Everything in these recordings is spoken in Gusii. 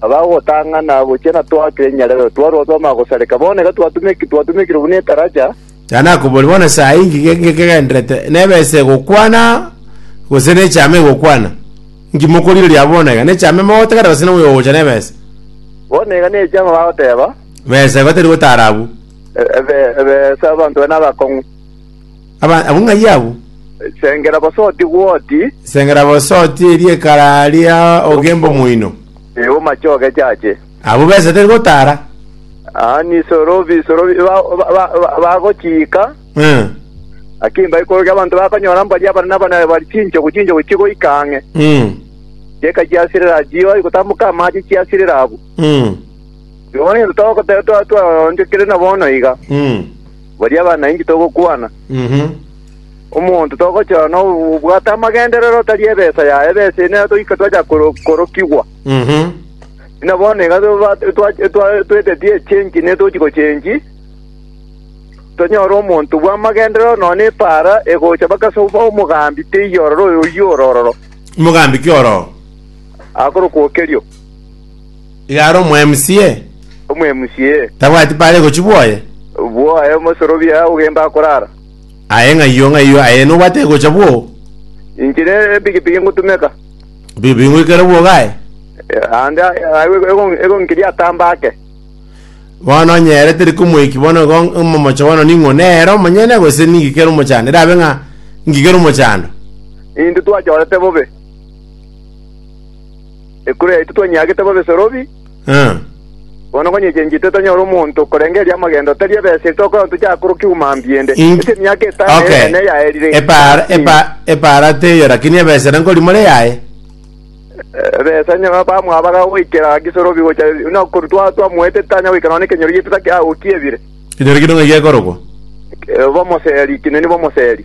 Abagotang'ana gochia natwakire enyarero, twarua twamanya gosareka. Bono iga twatumeki- twatumekire buna etaracha. Tari nakoboria bono saa inki ge- ge- kegenderete, nebesa egokwana, gose nechame egokwana? Inki mokorigereria abwo bono iga? Nechame mogotagera gose noyo ogocha nebesa? Bono iga nechama bagoteba, Besa igo teri gotara abwo. "E- ebe- ebesa abanto baria nabakong'u. Aba- abang'ai abwo Sengera bosoti gwoti, sengera bosoti eriekara ria ogemba omoino. ee, omache ogechache. Abwo besa tari gotara. Aa, nisoro bisoro bi- ba- ba- ba- ba- bagochiika, Eh, akimba igoro gi'abanto bakonyora mbaria abanene abanene bari chinchogu chinchogu chigoika ang'e. mm, Chieka chiasirera chioe gotamboka amache chiasirera abwo. mm, Bono intwe togoteba twa twaonchokire na bono iga. mm. baria abana inki togokwana? Omonto togochora nobwate amagenderero otari ebesa yaye, ebesa eye nero togoika twacha koro- korokigwa. Buna bono iga toba- twa- twa- tweteti echengi ne tochi gochengi, tonyore omonto bw'amagenderero nonya na epaara egocha mpaka ase obo- omogambi teiyo ororo oyo oyio ororo, Mogambi ki ororo? akorokwa okerio. Igare omwemusie, Omwemusie, tabwati paare gochi bwoye. bwoae omosorobia ogenda akorara. Aye ng'ayio, ng'ayio, aye nobwate gocha bwoo. Inche nepigipigi ngotumeka. Bibi ngwikere bwogae. Ande egonkiria atamba ake. Bono onye ere teri komoiki bono igo omomocha bono ning'o? Nere omonyene gose ningikere omochando? Erabe ng'a ngikere omochando. Intwe twachorete bobe. Ekura yaito twanyiagete bobe sorobi, Eh. bono konya echenchete tonyore omonto okorengereria amagendo tari ebeseri tokora tochakorokigwe mambia ende. In- Ase emiaka etano Okay. eye ene yaerire. Epara, epa, epara teyo lakini ebesa ere nkori more yaye. Ebesa nyaba bamwabaga goikera gisorobi gocha no koru twa twamuete tanya goikera ne kenyori gitata kia okiebire. Kinyori kino ng'ai gekorogwa? Bomoseri kineni bomoseri.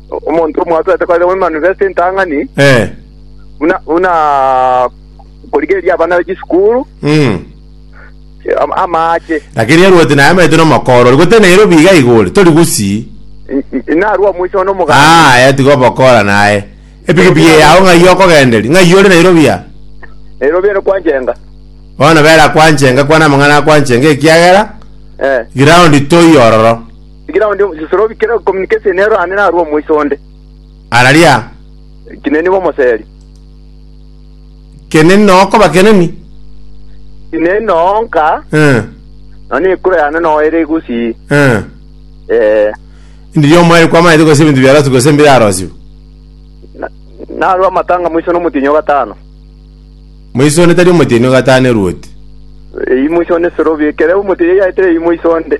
omonto omwatoete korera omomanifesto entang'ani, Eh. buna buna korigereria abana be chisukuru Mm. am- amaache. Lakini erwoti naye amaete nomokoro ori gotena ero biga iga ore tori gusii. N- n- Narwo omoiso one omoganda. Ah, ya tiga obokora naye. Epikipiki yao ng'ai okogenderi? Ng'ai ore Nairobi ya? Nairobi ere kwanjenga. Bono bera kwanchenga kwana amang'ana akwanchenga ekiagera Eh. ground toi ororo. Tigira onde omosisore obikere communication ero aane narue omoisa onde. Araria, Ekine nigo omoseri. keneni noo okoba keneni. Ekine noo nka, Eh, nonye na ekura yane noo ere egusii. eh. Eh, Ndiria omoeri kwamaete gose ebinto biarosiwe gose mbirarosiwe. na- narue amatanga moisa nomotienyi o gatano. Moisa onde tari omotienyi o gatano eruoti. Eyi moisa onde sore obikere omotienyi yaetere eyi moisa onde.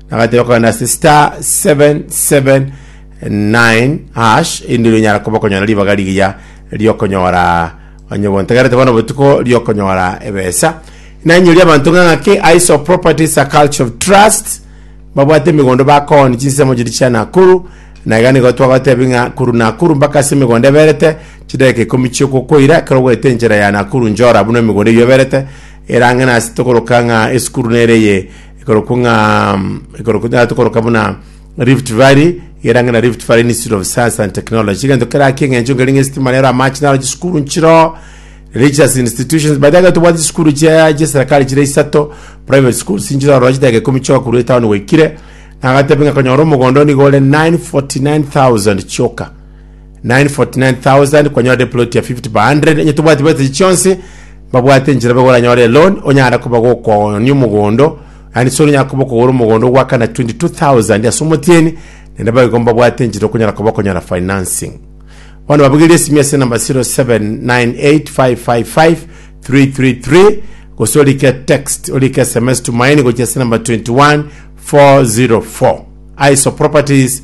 Nagateba kogenda ase star 779 hash indiro inyara koba konyora ribaga rigiya riokonyora onye bontegerete bono botuko riokonyora ebesa nanyori abanto ng'a ng'ake iso properties a culture of trust babwate emigondo bakoni chinsemo chiri chia nakuru na iga nigo twagotebi ng'a kuru nakuru mpaka ase emigondo eberete chidakika ikomi chiogokoira ekero ogwete enchera ya nakuru njora buna emigondo eyio eberete erang'e nase tokoroka ng'a esukuru nere eye ekorokwa ng'a ekorokwa tonyare tokoroka buna rift valley egerange na rift valley institute of science and technology egento keraki eng'encho nkeri ng'a esitima rero amache naro chisukuru nchiro religious institutions but egento tobwate chisukuru chia chiaserikali chire isato private schools nchire ororo chidaka ikomi chioka korwa etown goikire nagatebe ng'a konyora omogondo nigo ore 949000 chioka 949,000 kwanyora eploti ya 50 by 100 enye tobwati bwete echi chionsi babwate enchera bobe goranyore eloni onyara koba gokonia omogondo yani sori onyara koba okogora omogondo ogwakana 22000 ase omotieni naende abaigo mbabwate enchera okonyara koba okonyora financing bono babugerie esimi ase enamba 0798555333 gose orike text orike sms tumaini gochia ase enamba 21404 aiso properties